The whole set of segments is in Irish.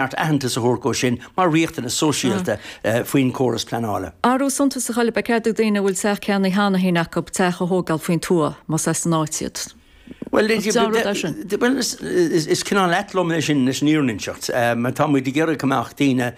cheart aitheantas a thabhairt dhó sin mar riachtanas sóisialta faoin gcóras pleanála. Athrú suntasach eile, ba cheart do dhaoine a bhfuil teach ceannaithe cheana féin acu teach a thógáil faoin tuath, más as an áit iad. Bhuel, is cineál ait liom é sin leis an fhírinne a inseacht, mar tá muid ag iarraidh go mbeadh daoine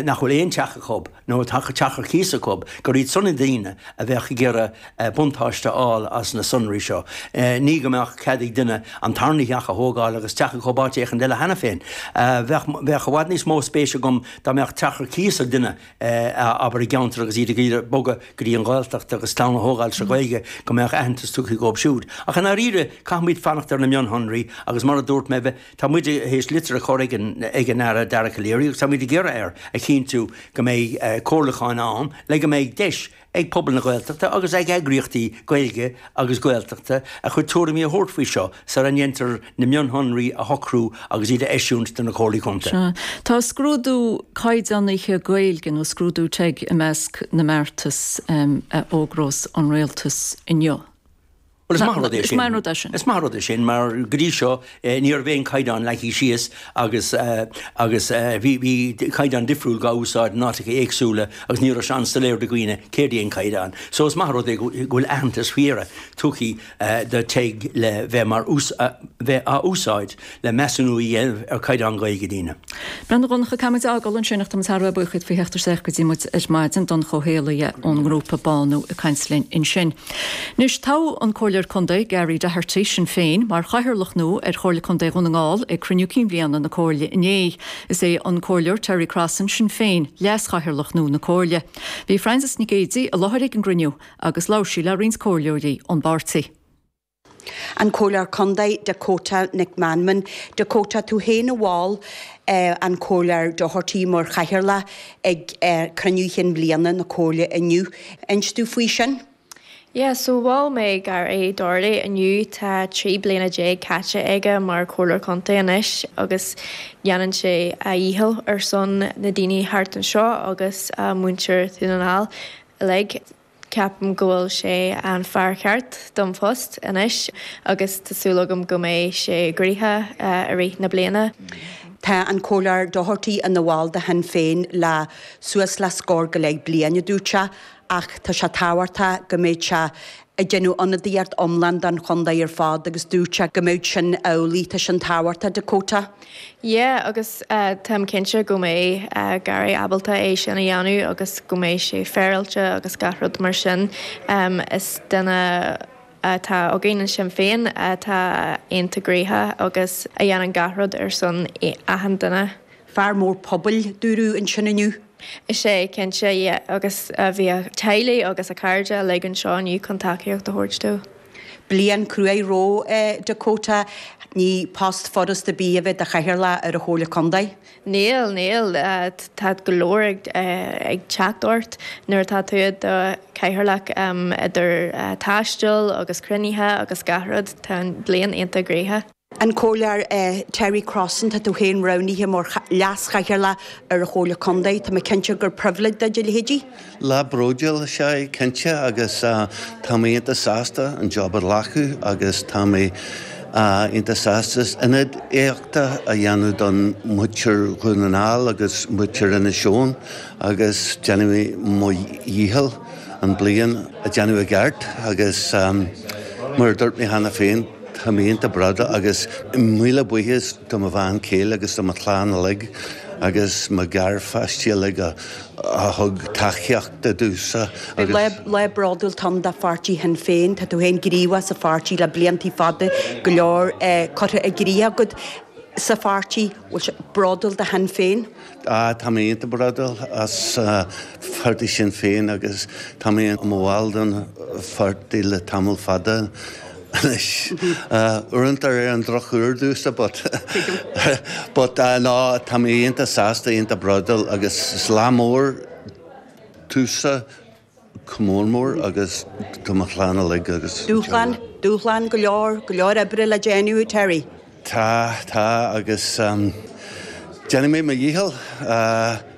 nach bhfuil aon teach acu, nó a bhfuil teach ar cíos acu, gur iad sin na daoine a bheadh ag iarraidh buntáiste a fháil as na sonraí seo, ní go mbeadh cead ag duine an tarna theach a thógáil agus teach acu in áit éicint eile cheana féin. Bheadh i bhfad níos mó spéis agam dá mbeadh teach ar cíos ag duine, abair, i gceantar agus iad ag iarraidh bogadh go dtí an Ghaeltacht agus clann a thógáil sa Ghaeilge, go mbeadh aitheantas tugtha dhóibh siúd. Ach i ndáiríre, caithfimid fanacht ar na mionshonraí agus mar a dúirt mé, Tá muid tar éis litir a chur ag an Aire Dara Calleary agus tá muid ag iarraidh air a chinntiú go mbeidh comhairliúcháin ann le go mbeidh deis ag pobal na Gaeltachta agus ag eagraíochtaí Gaeilge agus Gaeltachta a chuid tuairimí a thabhairt faoi seo sara ndéantar na mionshonraí a shocrú agus iad a eisiúint do na Comhairlí Contae. Tá scrúdú caighdeánaithe Gaeilge nó scrúdú teg i measc na mbeartas a fhógrós an Rialtas inniu. Bhuel, is maith an rud é sin. Is maith an rud é sin mar, go dtí seo, ní raibh aon chaighdeán leagtha síos agus agus bhí bhí caighdeán difriúil dhá úsáid in áiteacha éagsúla agus ní raibh sé an-soiléir do dhaoine céard é an caighdeán. So is maith an rud é go bhfuil aitheantas faoi dheireadh tugtha do teg le bheith mar bheith á úsáid. le measúnú a dhéanamh ar chaighdeán Gaeilge daoine. Breá, a Dhonncha, Caithfidh muid a fhágáil ansin ach tá muid thar a bheith buíoch faoi theacht isteach go dtí muid ar maidin, Donncha Ó hÉallaithe ón ngrúpa Bánú ag caint linn ansin. Anois, toghadh an Comhairleoir Contae Gary Doherty, Sinn Féin, mar Chathaoirleach nua ar Chomhairle Contae Dhún na nGall ag Cruinniú Cinn Bhliana na Comhairle inné. Is é an Comhairleoir Terry Crossan, Sinn Féin, Leas-Chathaoirleach nua na Comhairle. Bhí Frances Nic Géadaigh i láthair ag an gcruinniú agus labhair sí le roinnt Comhairleoirí ón bpáirtí. An Comhairleoir Contae Dakota Nic Mheanman, Dakota tú féin a mhol an Comhairleoir Doherty mar Chathaoirleach ag cruinniú chinn bhliana na Comhairle inniu. Inis dúinn faoi sin? Yeah, so mhol mé Gary Doherty inniu, tá trí bliana déag caite aige mar Chomhairleoir Contae anois agus déanann sé a dhícheall ar son na ndaoine thart anseo agus muintir Dhún na nGall uilig. Ceapaim go bhfuil sé an fear ceart don phost anois agus tá súil agam go mbeidh sé gnoitheach i rith na bliana. Tá an Comhairleoir Doherty ina bhall de Shinn Féin le suas le scór go leith bliain, a dúirt sé, ach tá sé tábhachtach go mbeidh sé ag déanamh ionadaíocht iomlán don chontae ar fad agus dúirt sé go mbeadh sin amhlaidh. Tá sin tábhachtach, Dakota. Yeah, agus táim cinnte go mbeidh Gary ábalta é sin a dhéanamh agus go mbeidh sé féaráilte agus gach rud mar sin. Is duine atá againn in Sinn Féin atá iontach gnaitheach agus a dhéanann gach rud ar son achan duine. Fear mór pobail, dúradh ansin inniu. Is é, cinnte, agus bhí a theaghlach agus a chairde uilig anseo inniu chun tacaíocht a thabhairt dó. Bliain cruaidh roimhe, Dakota. Ní post furasta a bheith i do chathaoirleach ar an Chomhairle Contae. Níl, níl. Tá go leor ag teacht ort nuair atá tú i do chathaoirleach, idir taisteal agus cruinnithe agus gach rud. Tá an bhliain iontach gnaitheach. An Comhairleoir Terry Crossan, Tá tú féin roghnaithe mar Leas-Chathaoirleach ar an Chomhairle Contae. Tá mé cinnte gur pribhléid duit a leithéid de lá bródúil. Is ea, cinnte, agus tá mé iontach sásta an job a ghlacadh agus tá mé iontach sásta ionadaíocht a dhéanamh do mhuintir Dhún na nGall agus muintir Inis Eoghain agus déanfaidh mé mo dhícheall an bliain a dhéanamh i gceart agus mar a dúirt mé cheana féin, Tá mé iontach bródúil agus míle buíochas do mo bhean chéile agus do mo chlann uilig agus mo gharpháistí uilig a thug tacaíocht domhsa agus. Lá bródúil ann do pháirtí Shinn Féin. Tá tú féin gníomhach sa pháirtí le bliantaí fada, go leor curtha i gcrích agat sa pháirtí. Bhfuil tú bródúil de Shinn Féin? Tá mé iontach bródúil as pháirtí Sinn Féin agus tá mé i mo bhall den pháirtí le tamall fada anois. Uaireanta ar an drochuair domhsa but but no tá mé iontach sásta, iontach bródúil agus is lá mór domhsa. Comh lá mór agus do mo chlann uilig agus. Dúshlán, dúshlán go leor, go leor oibre le déanamh, Terry. Tá, tá agus déanfaidh mé mo dhícheall.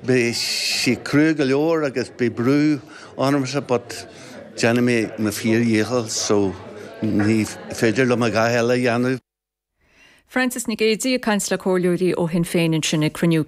Beidh sé crua go leor agus beidh brú ormsa but déanfaidh mé mo fíor-dhícheall so ní féidir liom a dhath eile a dhéanamh. Frances Nic Géidigh ag caint le comhairleoirí ó Shinn Féin ansin ag cruinniú.